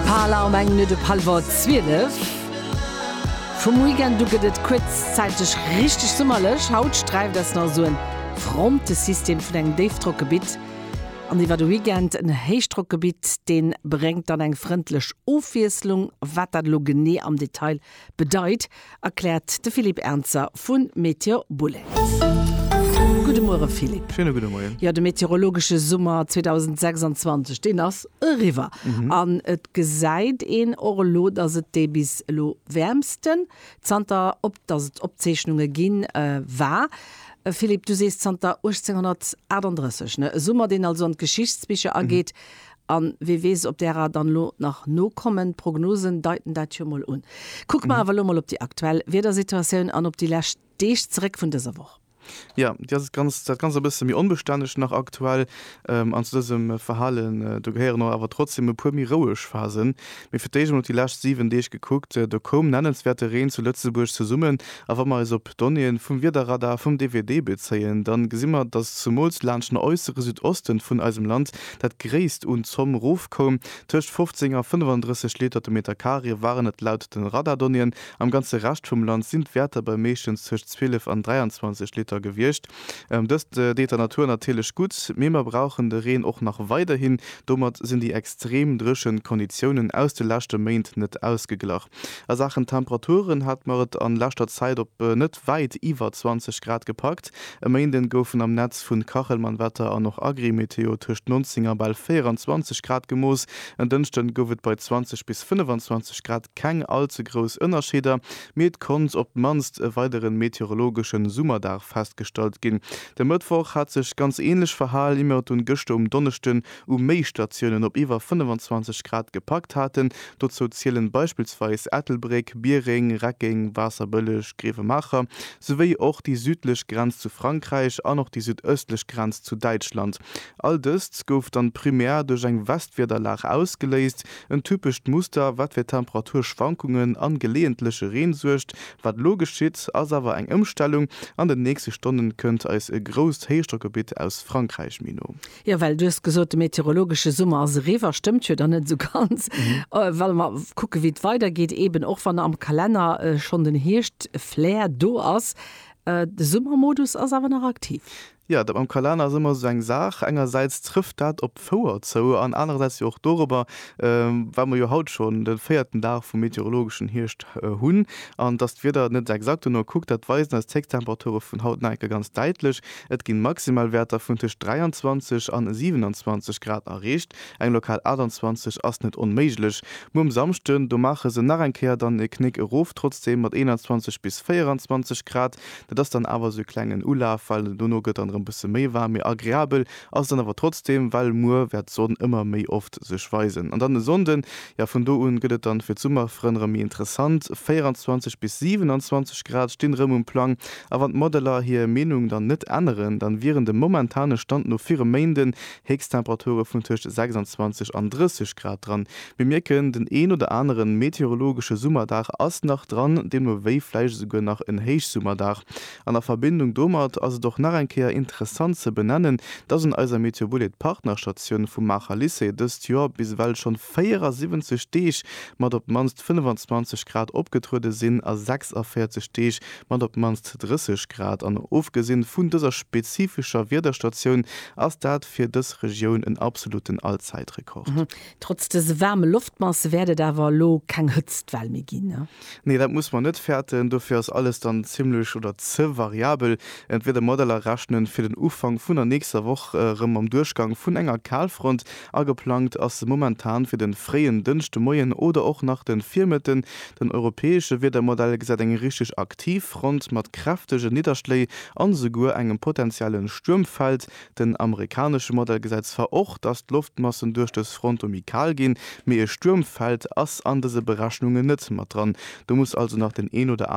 Parler am eng Minutt op hallwer 12. Vum Weekend u gëtt et kuerzzäiteg richteg summerlech. Haut sträift eis nach esou e Frontesystem vun engem Déifdrockgebitt an iwwer de Weekend en Héichdrockgebitt. Dee bréngt dann eng frëndlech Ofwiesslung. Wat dat elo genee am Detail Bedeit, erkläert de Philippe Ernzer vu Météo Boulets. Gudde Muere Philippe. Schéine gudde Moien. Jo, de meteorologesche Summer 2026, deen ass eriwwer. An et gesäit een och elo, datt et dee bis elo wäermsten zanter op datt et Opzeechnunge ginn, war. Philippe, du sees zanter 1838, ne? E Summer, deen also an d'Geschichtsbicher ageet An wee weess, ob därer dann elo nach nokommen. D'Prognosen deiten dat jo mol un. Kucke mer awer elo mol op déi aktuell Wiedersituatioun an op déi lescht Deeg zeréck vun dëser Woch. Jo, déi ass et ganz, dat Ganzt e bësse méi onbestänneg nach aktuell. An zu dësem Verhalen, do gehéieren och awer trotzdem e puer méi roueg Phasen. Mee fir d'éischt mol op déi lescht 7 Deeg gekuckt, do koum nennenswäerte Reen zu Lëtzebuerg zesummen. A wa mer eis op d'Donnéeën vum Wiederradar vum DWD bezéien, da gesi mer, dass zumools laanscht den äussere Südosten vun eisem Land dat gréisst un Zomm rofkoum. Tëscht 15 a 35 Liter de Meter Carré waren et laut de Radardonnéeën. Am ganze Rescht vum Land sinn d'Wäerter bei meeschtens tëscht 12 an 23 Liter gewiescht. Dëst deet der Natur natierlech gutt, mee mer brauchen de Reen och nach weiderhin. Domat sinn déi extrem dréchen Konditiounen aus de leschte Méint net ausgeglach. A Saachen Temperaturen hat mer et an leschter Zäit op net wäit iwwer 20 Grad gepackt. E Méinden goufen am Netz vun Kachelmann Wetter an och Agrimeteo tëscht 19 a bal 24 Grad gemooss. En Dënschden gouf et bei 20 bis 25 Grad keng all ze grouss Ënnerscheeder, Mee et konnt op d'mannst e weideren meteorologeschen Summerdag festgestallt ginn. De Mëttwoch hat sech ganz ähnlech verhal, immert dunn gëschter um Donneschden u méi Statiounen op iwwer 25 Grad gepackt haten. Dozou zielen beispillsweis Ettelbréck, Biereng, Reckeng, Waasserbëlleg, Grevemacher, souwéi och déi südlech Grenz zu Frankräich an och déi südëstlech Grenz zu Däitschland. All dëst gouf dann primär duerch eng Westwiederlag ausgeléist, En typescht Muster, wat fir Temperaturschwankungen an geleeëntleche Reen suergt. Wat elo geschitt, ass awer eng Ëmstellung, An den nächste Stonnen kënnt eis e grousst Héichdrockgebitt aus Frankräich méi no. Jo, well du hues gesot, de meteorologesche Summer ass eriwwer. Stëmmt jo dann net esou ganz, wa mer kucken, wéi et weidergeet. Eeben och wann am Kalenner schonn den Hierschtflair do ass, de Summermodus ass awer nach aktiv. Jo, dat mam Kalenner ass ëmmer esou eng Saach. Engersäits trëfft dat op d'Fouer zou an anerersäits jo och dorobber, well mer jo haut schonn de véierten Dag vum meteorologeschen Hierscht hunn an dass d'Wieder net exakt dono kuckt. Dat weisen eis d'Héichtemperature vun haut nach eng Kéier ganz däitlech. Et ginn Maximalwäerter vun tëscht 23 an 27 Grad erreecht. Eng lokal 28 ass net onméiglech. Muer um Samschden, do maache se nach eng Kéier dann e Knéck erof, trotzdeem mat 21 bis 24 Grad. Dat ass dann awer esou e klengen Ulaf, well dono gëtt dann erëm e bësse méi waarm. Mee agreabel ass et dann awer trotzdeem, well muer wäert d'Sonn ëmmer méi oft sech weisen. An dann e Sonnden, jo vun do un gëtt et dann fir d'Summerfrënn erëm méi interessant, 24 bis 27 Grad stinn erëm um Plang. A wann d'Modeller hir Meenung dann net änneren, dann wieren dem momentane Stand no fir e Méinden Héchsttemperature vun tëscht 26 an 30 Grad dran. Mir mierken, den een oder aneren meteorologesche Summerdag ass nach dran, deemno wéi vläicht esouguer nach en Héichsummerdag. An a Verbindung domat ass et och nach eng Kéier interessant ze benennen, dass un eiser MeteoBullet Partnerstatioun vum Maacher Lycée dëst Joer bis ewell schonn 74 Deeg mat op d'mannst 25 Grad opgetruede sinn a 46 Deeg mat op d'mannst 30 Grad. An ofgesinn vun dëser spezifescher Wiederstatioun ass dat fir dës Regioun en absoluten Allzäitrekord. Trotz dëse waarme Loftmasse wäert et awer elo keng Hëtztwell méi ginn. Nee, dat muss mer net fäerten. Dofir ass alles dann zimmlech oder ze variabel. D'Wiedermodeller rechnen fir den Ufank vun der nächster Woch erëm mam Duerchgang vun enger Kalfront. Ageplangt ass momentan fir den fréien Dënschdemoien oder och nach den Virmëtten. Den europäesche Wiedermodell gesäit eng richteg aktiv Front mat kräftegen Nidderschléi an esouguer engem potentiellen Stuermfeld. Den amerikanesche Modell gesäit zwar och, dass d'Loftmassen duerch dës Front do méi kal ginn, mee e Stuermfeld ass an dëse Berechnungen net mat dran. Do muss also nach den een oder aneren